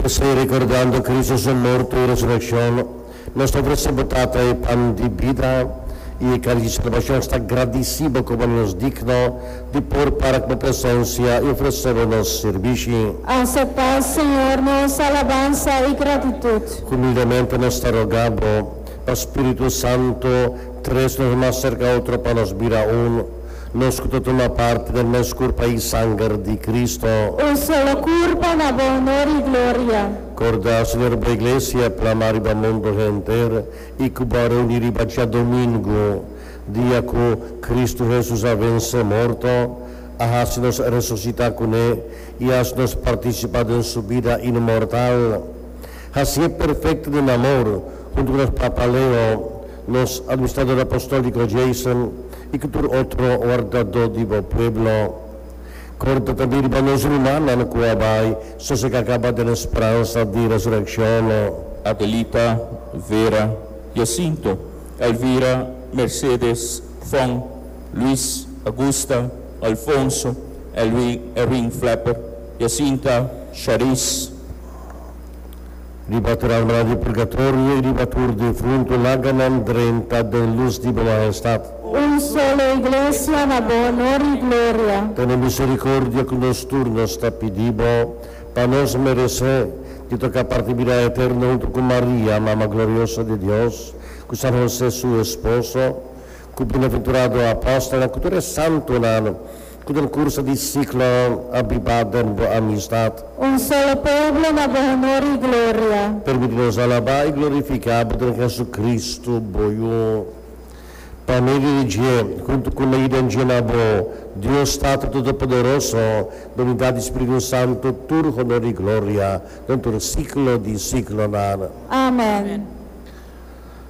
P'esei, rekordando Kristu su morto i resurekshon, nos ta ofresé bo Tata e pan di bida i e kadi di salbashon. Sta gradisí bo komo nos digno di por para ku bo presensia i ofresé bo nos sirbishi. Aseptá, Señor, nos alabansa i gratitut. Humildemente nos ta rogá bo pa spiritu santu tres nos mas serka otro pa nos bira un. nos ku ta tuma parti den nos kurpa i sanger di Kristo. O solo kurpa na bo onor i gloria. Korda, Señor, bo iglesia plama riba mundu henter i ku bo a reuní riba djadomingu, dia ku Kristu Hesus a vensé morto, a hasi nos resusitá kuné i a hasi nos partisipá den su bida inmortal. Hasié perfekto den amor huntu ku nos papa Leo, Nos Administrador Apostolíco Jason i ku tur otro wardadó di bo pueblo. Korda ta di riba nos rumannan ku a bai so se ka kaba den e speransa di resurekshonnan. Adelita, Vera, Jacinto, Elvira, Mercedes, Fon, Luis, Agusta, Alfonso, Elwin, Erwin, Flapper, Jacinta, Sharice. Riba Tralmala di Purgatorio i riba tur difuntu laganan drenta den lus di Bo Mahestat. Un solo Iglesia na Bo onor i gloria. Tene misericordia cu nos tur, nos ta pidi Bo, pa nos merece di toca parti bida eterno huntu cu Maria, Mama Gloriosa di Dios, cu San Jose su esposo, cu Bienaventurado Apostelnan, cu tur e santunan, Cu transcurso di ciclo a biba den bo amistad. Un solo pueblo na bo honor y gloria. Permiti nos alaba y glorifica bo den Jesucristo, bo Yu. Pa medio di dje, hunto cu na yuda dje na bo, Dios Tata Todopoderoso, bo a bindadi Spiritu Santo tur honor y gloria den tur ciclo di ciclonan. Amen.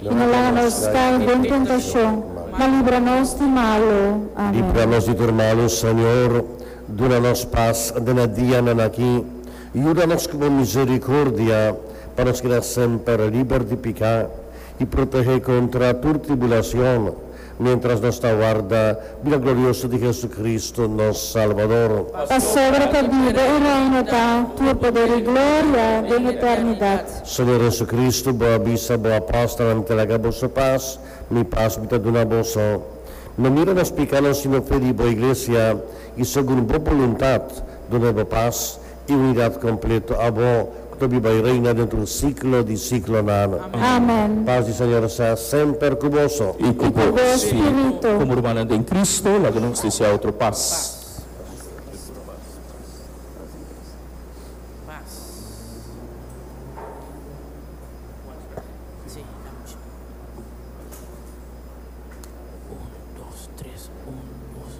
i no laga nos kai den tentashon, ma libra nos di malu. Amen. Libra nos di tur malu, Señor. Duna nos pas den e dianan aki. Yuda nos ku bo misericordia, pa nos keda semper liber di piká, i protehé kontra tur tribulacion, Mientras nos ta warda bida glorioso di Jesucristo, nos Salbador. Pasobra ta biba un reino ta tur poder i gloria den eternidad. Señor Jesucristo, bo a bisa bo apòstelnan, Mi ta laga boso pas, mi pas mi ta duna boso. No mira nos picánan, sino fe di bo Iglesia, i segun bo boluntad, duna e bo pas, E unidat kompleto abo ku ta biba i reina dentro un siklo di siklonan. Amen. Pas di Señor sea semper ku boso. I ku bo spiritu. Komo rumannan den Kristu, laga nos dese a otro pas.